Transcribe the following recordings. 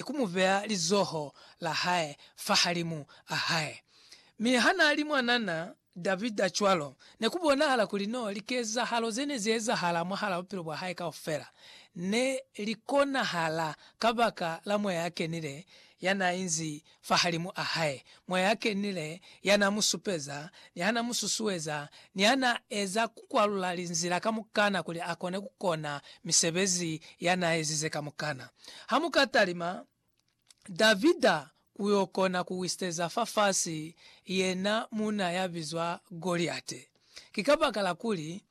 ni ku mu beya lizoho la hae fahalimu a hae. Mi ha n'a li mwanana Davida cwalo, ne ku bonahala kuli n'o likezahalo ze ne z'ezahala mwahal'a bupilo bwa hae kaufela ne li konahala kabaka la Moya ya Kenile ya n'a inzi fahalimu a hae, Moya ya Kenile ya n'a mu supeza, ni ha n'a mu susueza, ni ha n'a eza ku kwalula linzila kamukana kuli a kone ku kona misebezi ya n'a ezize kamukana. Ha mu ka talima Davida ku yo kona ku wisiteza fafasi yena muuna ya bizwa Goliate, ki kabakala kuli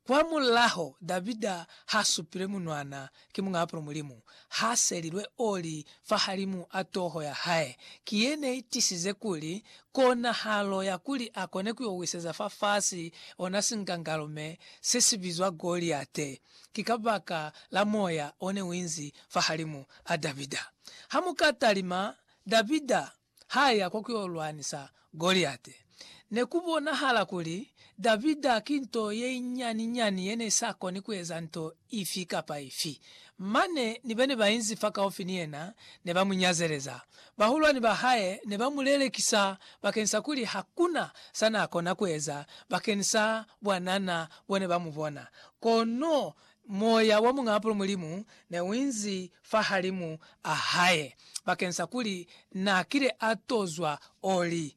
kwa mulaho Davida ha supilwe munwana ki Muñaapolo Mulimu, ha selilwe oli fahalimu a toho ya hae. Ki ye ne i tisize kuli konahalo ya kuli a kone ku yo wisiteza fafasi ona sinkangalume se si bizwa Goliate ki kabaka la moya one uinzi fahalimu a Davida. Ha mu ka talima, Davida ha ya kwa kuyo lwanisa Goliate. Ne ku bonahala kuli Davida ki nto yeinyani-nyani yene isa koni kueza nto ifi kapa ifi. Mane ni bene bainzi fakaufi ni yena ne ba mu nyazeleza. Bahulwani ba hae ne ba mu lelekisa bakeni sa kuli hakuna sa na kona kueza bakeni sa bwanana bone ba mu bona. Kono moya wa muñ'apolo Mulimu ne u inzi fahalimu a hae, bakeng sa kuli n'a kile a tozwa oli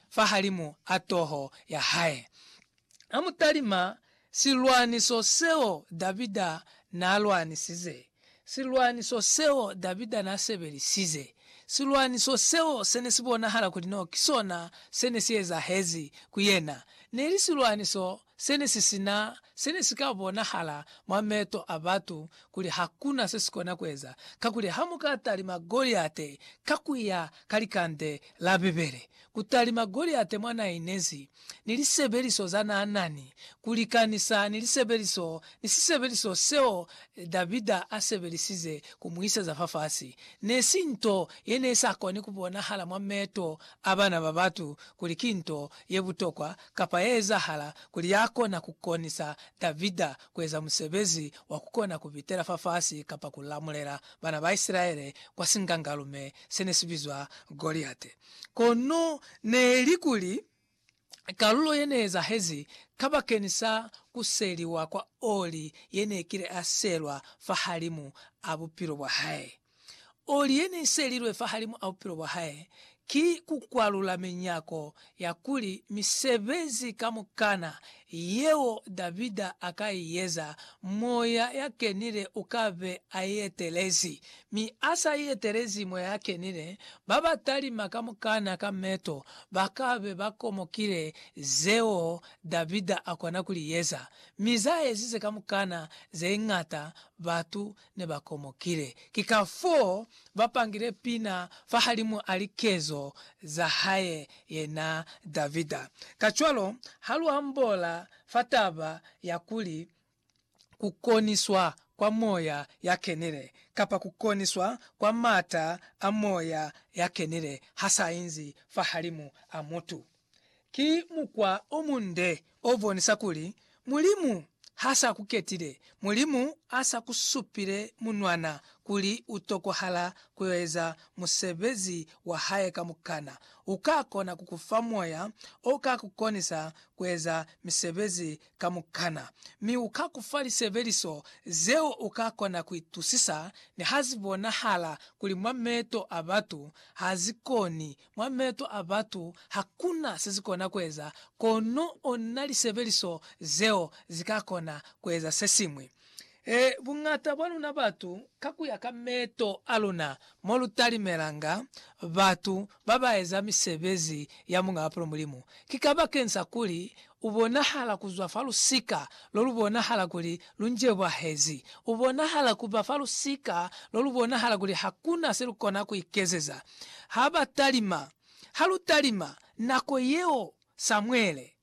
fahalimu a toho ya hae. A mu talima silwaniso seo Davida n'a lwanisize, silwaniso seo Davida n'a sebelisize, silwaniso seo se ne si bonahala kuli n'o ki sona se ne si ezahezi ku yena. Ne li silwaniso Se ne si sina se ne si ka bonahala mwa meto a batu kuli hakuna se si kona kueza, kakuli ha mu ka talima Goliate ka ku ya ka likande la Bibele, ku talima Goliate mwa na inezi, ni lisebeliso za na nani, ku likanisa ni lisebeliso, ni sisebeliso seo Davida a sebelisize ku mu iseza fafasi, ne si nto ye ne sa koni ku bonahala mwa meto a bana ba batu kuli ki nto ye butokwa kapa ye ezahala kuli ya kona ku konisa Davida ku eza musebezi wa ku kona ku pitela fafasi kapa ku lamulela bana ba Isilaele kwa singangalume se ne si bizwa Goliate. Kono ne li kuli kalulo ye ne ezahezi kabakeñisa ku seliwa kwa oli ye ne kile a selwa fahalimu a bupilo bwa hae. Oli ye ne i selilwe fahalimu a bupilo bwa hae ki ku kwalula minyako ya kuli misebezi kamukana yeo Davida a ka i eza, Moya ya Kenile u ka be a i etelezi. Mi a sa i etelezi Moya ya Kenile, ba ba talima kamukana ka meto ba ka be ba komokile zeo Davida a kona ku li eza, mi za ezize kamukana ze ñata batu ne ba komokile. Ki ka fo ba pangile pina fahalimu a likezo za hae yena Davida. Kacwalo, ha lu ambola fa taba ya kuli ku koniswa kwa moya ya kenile, kapa ku koniswa kwa m'ata a moya ya kenile ha sa inzi fahalimu a mutu, Ki mukwa o munde o bonisa kuli Mulimu ha sa ku ketile. Mulimu a sa ku supile munwana kuli u tokohala ku yo eza musebezi wa hae kamukana. U ka kona ku ku fa moya o ka ku konisa ku eza misebezi kamukana. Mi u ka ku fa lisebeliso zeo u ka kona ku itusisa niha zi bonahala kuli mwa meto a batu ha zi koni Mwa meeto a batu hakuna sezikona kueza, kono ona lisebeliso zeo zikakona kueza sesiñwi. E, buñata bwa luna batu, kakuya ka meeto aluna, molutalimelanga batu babaeza misebezi ya Muñaa Pulu Mulimu, ki kabakeng sa kuli U bonahala ku zwa fa lusika lo lu bonahala kuli lu njebwahezi. U bonahala ku ba fa lusika lo lu bonahala kuli ha ku na se lu kona ku ikezeza. Ha ba talima. Ha lu talima, nako yeo Samuele,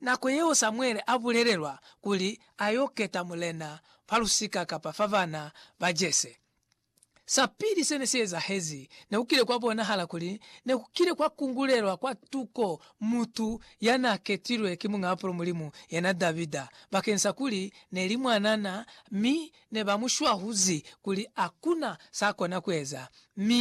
nako yeo Samuele a bulelelwa kuli a y'o keta mulena fa lusika kapa fa bana ba Jese, Sa pili se ne si ezahezi, ne ku kile kwa bonahala kuli ne ku kile kwa kungulelwa kwa tuko mutu ya n'a ketilwe ki Muñaapulo Mulimu, yena Davida, bakeng sa kuli ne li mwanana mi ne ba mu shwahuzi kuli ha ku na s'a kona ku eza, mi